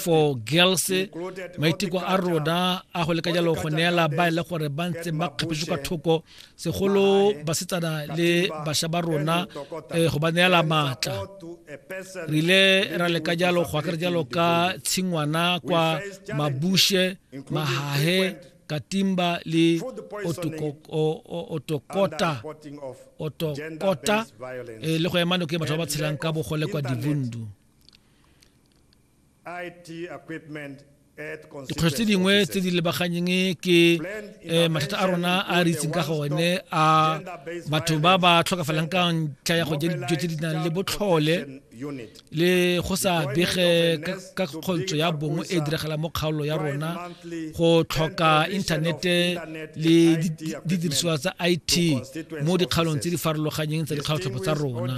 for girls maiteko a rona a go leka jalo go neela ba e le gore ba ntse ba kgapetse ka thoko segolo basetsana le bašwa ba rona eh, go ba neela maatla re ile ra leka jalo go akere jalo ka tshingwana kwa mabushe mahahe katimba le otokota otokota eh, le go emanoko e batho ba ba tshelang ka bogole kwa divundu dikgwetlho tse dingwe tse di lebaganyeng ke um mathata a rona a re itseng ka gone a batho ba ba tlhokafalang ka ntlha ya go ja dijo tse di nang le botlhole le go sa bege ka kgontsho ya bongwe e diragalang mo kgaolo ya rona go tlhoka inthanete le didiriswa tsa it mo dikgaolong tse di farologanyeng tsa dikgaotlhopo tsa rona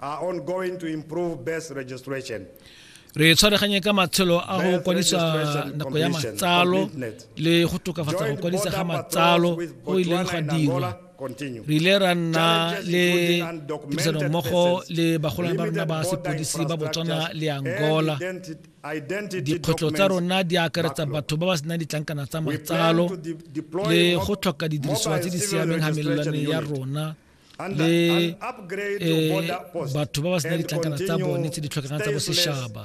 are ongoing to improve birth registration. re tshwareganye ka matshelo a go kwadisa nako ya matsalo le go tokafatsa go kwadisa ga matsalo go ileng ga dirwa re ile ra nna le tirisanommogo le bagolwane ba rona ba sepodisi ba botswana le angola dikgwetlho tsa rona di akaretsa batho ba ba senang ditlankana tsa matsalo le go tlhoka didirisiwa tse di siameng ga melelwane ya rona le eh, batho ba ba senang ditlankana tsa bone tse di tlhokegang tsa bosetšhaba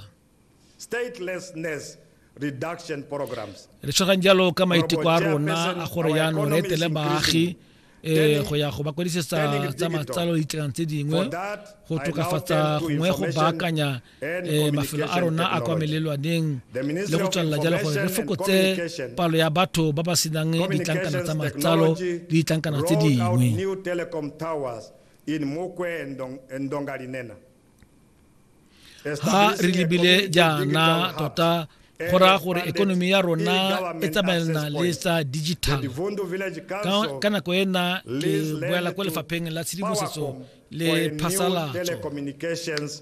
re tshwarang jalo ka maiteko a rona a gore yaanong re etele baagi eh go ya go ba kwadisetsa tsa matsalo ditekanyo tse dingwe go tokafatsa gongwe go baakanya e mafelo a rona a kwa melelwaneng le go tswelela jalo gore re fokotse palo ya batho ba ba senang ditlankana tsa matsalo le ditlankana tse dingwe ha re lebile jaana tota go raya gore ekonomi ya rona e tsamaelana le tsa digital ka nako ena ke boela kwa lefapheng la tshedimosetso le phasalatso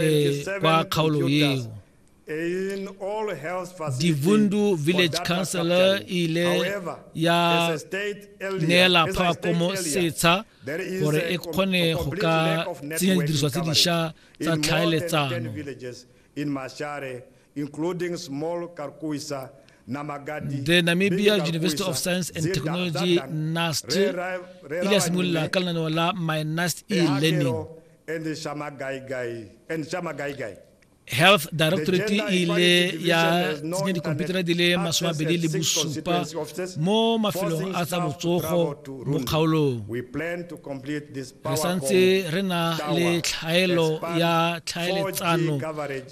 e, kwa kgaolong eo divundu village councilor ile ya neela phakomo setsha gore e kgone go ka tsenya didiriswa tse dišwa tsa tlhaeletsano including small Karkuisa the namibia university of science and technology nast ile ya simolola ka lenaneo la my nast e-learning and Shama Gai Gai and Shama Gai Gai. Health Directorate e ile ya tsenya dikhomputara di le masome abedi le bosupa mo mafelong a tsa botsogo mo kgaolong re santse re na le tlhaelo ya tlhaeletsano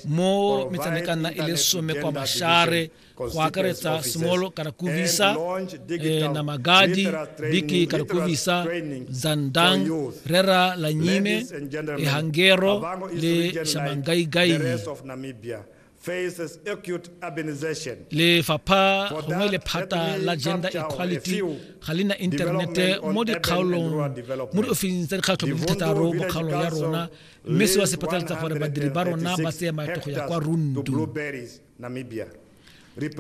mo metsanekana e le some kwa mashare go akaretsa small kana kuvisa eh, na magadi biki kana kuvisa zandang rera la nyime ehangero le shamangaigaini lefapha gongwe lephata la gender equality ga le na inthanete mo dikgaolong mo diofising tsa dikgatlho di thataro mo kgaolong ya rona mme seo se phatlaletsa gore badiri ba rona ba tseye maeto go ya kwa rundu Namibia re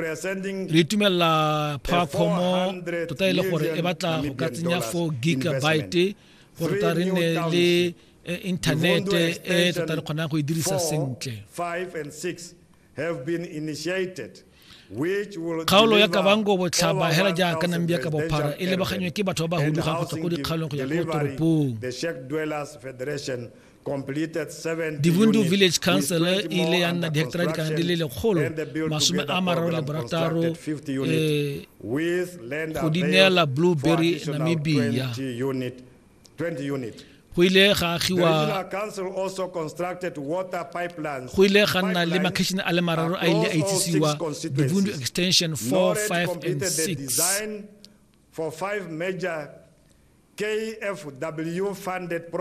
itumelela phakgomo tota e le gore e batla go ka tsenya 4 gigabyte gore ta re nne le e, inthanete e tota re kgonang go e dirisa sentle kgaolo ya kabango botlhaba hela jaaka nambia ka bophara e lebaganywe ke batho ba ba hudugang go tswa ko dikgaolong go ya ko toropong dibundu village council e ile ya nna diheketara dikana di le lekgolo masome a mararo le borataro eh, go di neela blueberry namibia go ile ga agiwa go ile ga nna le makhetšhene a le mararo a ile a itsisiwa dibundu extension 4 5 and 6 for five major KFW funded projects.